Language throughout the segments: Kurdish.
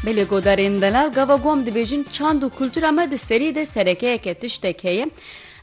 Belê godarên delal gava gom dibêjin çand û kultura me di serî de serekeyeke tiştek heye.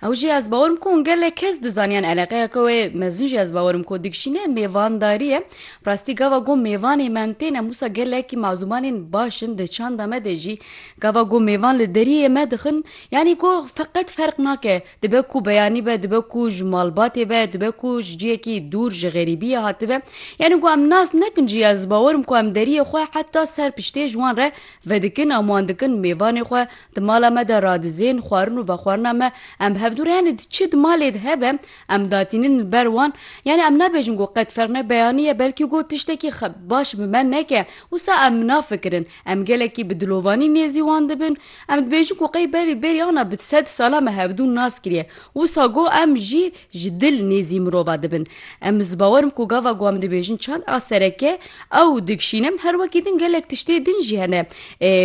Ew jî ez bawerim ku gelek kes dizaniyan eleqeyeke wê mezin jî ez bawerim ku dikişîne mêvandarî ye. Rastî gava gom mêvanê me tên em wisa gelekî mazûmanên baş in di çanda me de jî gava gom mêvan li deriyê me dixin yanî ku feqet ferq nake Dibe ku beyanî be, dibe ku ji malbatê be, dibe ku ji ciyekî dûr ji xerîbiyê hatibe. Yanî ku em nas nekin jî ez bawer im ku em deriyê xwe heta ser piştê ji wan re vedikin em wan dikin mêvanê xwe di mala me de radizên xwarin û vexwarina me em hevdûr yanî di çi di malê de hebe em datînin li ber wan yanî em nabêjin ku qet ferq ne beyanî ye belkî ku tiştekî baş bi me neke wisa em nafikirin Em gelekî bi dilovanî nêzî wan dibin. Em dibêjin ku qey berî berî ana bi sed sala me hevdû nas kiriye. Wisa go em jî ji dil nêzî mirova dibin. Em ez bawer im ku gava ku em dibêjin çand a sereke ew dikşîne. Her wekî din gelek tiştê din jî hene.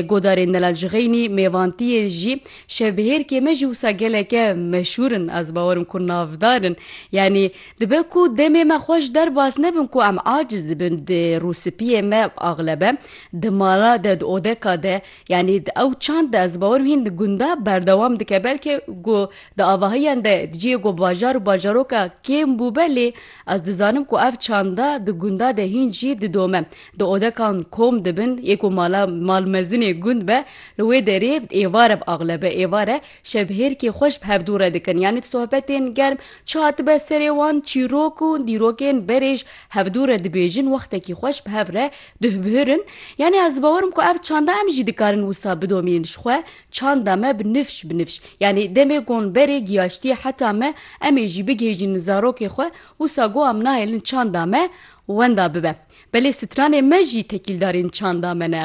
Godarên Delal Jixeynî, Mêvantiyê jî, Şevbihêrkê me jî wisa geleke meşhûr in. Ez bawer im ku navdar in. Yanî Dibe ku demê me xwe ji der baz nebin ku em aciz dibin di rûspiyê me axlebe di mala de di odeka de yanî di ew çand de ez bawerim hîn di gunda berdewam dike belkê ku di avahiyan de di ciyê ku bajar û bajaroka kêm bûbe lê ez dizanim ku ev çanda di gunda de hîn jî didome di odekan kom dibin yê ku mala mal mezinê gund be li wê derê êvar e axlebe êvar e Şevhêrkê xwe ji bi hevdû re dikin yanî di sohbetên germ çi hatibe serê wan çîrok û dîrokên berê ji hevdû re dibêjin wextekî xwe ji bi hev re duhbihirin yanî ez bawerim ku ev çanda em jî dikarin wisa bidomînin ji xwe çanda me bi nifş bi nifş yanî demê gon berê giyaştiye heta me em ê jî bigihêjînin zarokê xwe wisa go em nahêlin çanda me wenda bibe belê stranê me jî tekîldarên çanda me ne.